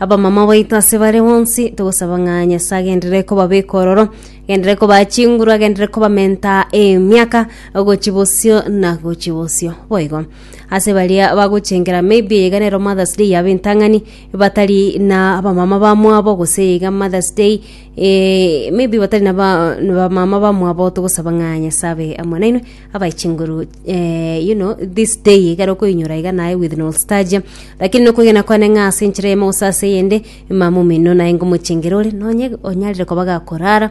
Abamama baito ase bare bonsi, togosaba ng'a Nyasae agenderere kobabeka ororo, agenderere kobaa chinguru, agenderere kobamenta emiaka gochia bosio na gochia bosio. Boigo, ase baria bagochengera maybe eyeiga nero Mother's Day yabo entang'ani, batari na abamama bamwabo gose eyeiga Mother's Day eh, maybe batari na ba- na bamama bamwabo, togosaba ng'a Nyasae abe amo nainwe, abae chinguru eh, you know this day igare okoinyora iga naye with nostalgia lakini nokogena kwane ng'a ase enchera emo gose ase eyende mama omino naye ngomochengera ore nonye onyarire koba gakorara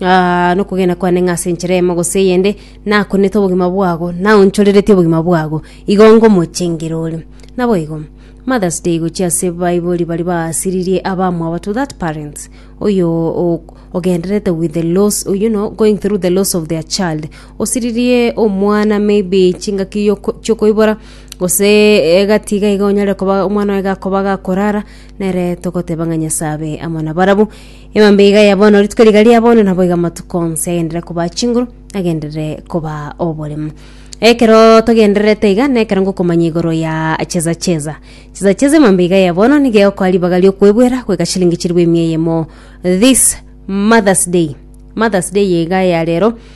Ah, nokogena kwane ng'a ase enchera emo gose eyende nakonete obogima bwago naonchorereti obogima bwago igo ngomochengera ore naboigo mothers day gochia ase baibori bari baasiririe abamwabo to that parents oyo o- ogenderete with the loss you know going through the loss of their child osiririe omwana maybe chingaki yoko- chiokoibora, gose egati iga iga onyare koba omwana oye gakoba gakorara, nere togoteba ng'a Nyasaye abe amo nabarabwo. Emambe iga ya bono, rituko riga ria bono nabo iga amatuko onsi agenderere koba chinguru, agenderere koba oboremu. Ekeroo togendererete iga, nekero ngokomanya igoro yaa cheza cheza. Cheza cheza emambe iga ya bono, nigo egokoa ribaga riokoebuera goika chilingi chilifu emia eyemo this Mother's Day. Mother's Day iga ya rero.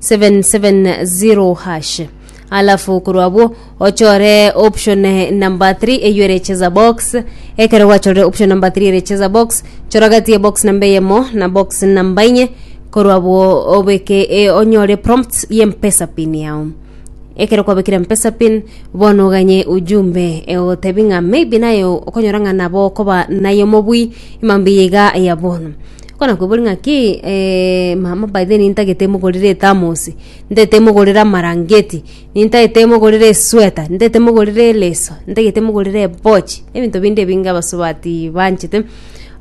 770#. Alafu korwa abwo ochore option eh, number 3 eyo ere cheza box ekero gwachorire option number 3 ere cheza box chora gati ya box namba eyemo na box namba inye korwa abwo obeke e, onyore prompts ye mpesa pin yao ekero kwabekire mpesa pin bono oganye ujumbe egotebi ng'a maybe naye okonyora ng'a nabo okoba naye omobui mambia iga ya bono Konakwebori ng'aki eeh mama by the way nintagete mogorere ethermos, ntagete mogorere amarangeti, nintagete mogorere esweater, ntagete mogorere eleso, ntagete mogorere ebochi, ebinto binde ebinge abasubati banchete,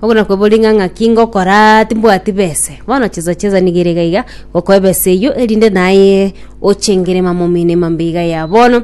obo nakwebori ng'a ng'aki ngokoraa timbwati bese, bono chesa chesa niga ere iga iga, gokoa ebesa eywo erinde naye ochengere mamamino emambe iga ya bono.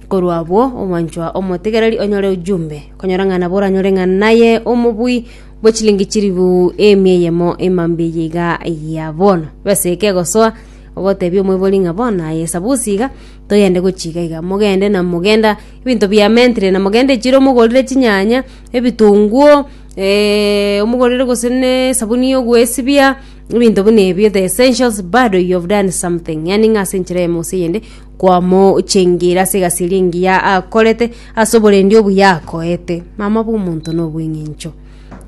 Korwa abwo, omwanchwa omotegereri onyore ojumbe, okonyora ng'a nabo oranyore ng'a naye omobui bwe chilingi chilifu emia eyemo emambia eye iga ya bono. Besa eye kegosoa, ogoteebia omoibori ng'a bono aye esabusi iga, toyende gochia iga iga. Mogende na mogenda ebinto biamentire na mogende echiro mogorire chinyanya, ebitunguo, omogorire gose na esabuni ya ogoesibia, ebinto buna ebio, the essentials, bado you have done something. Yaani ng'a ase enchera eyemo gose eyende. Kwamochengire ase egasieri engiya akorete, ase oborendi obuya akoete. Mama bw'omonto na obweng'encho.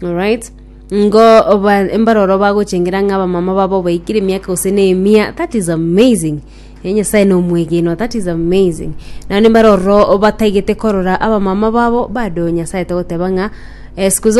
Alright? Ngo oba- mbaroro bagochengera ng'a abamama babo baikire emiaka gose na emia, that is amazing. Eh, Nyasae na omwegenwa, that is amazing. Naende mbaroro bataigete korora abamama babo bado Nyasae togoteba ng'a eh, siku zote.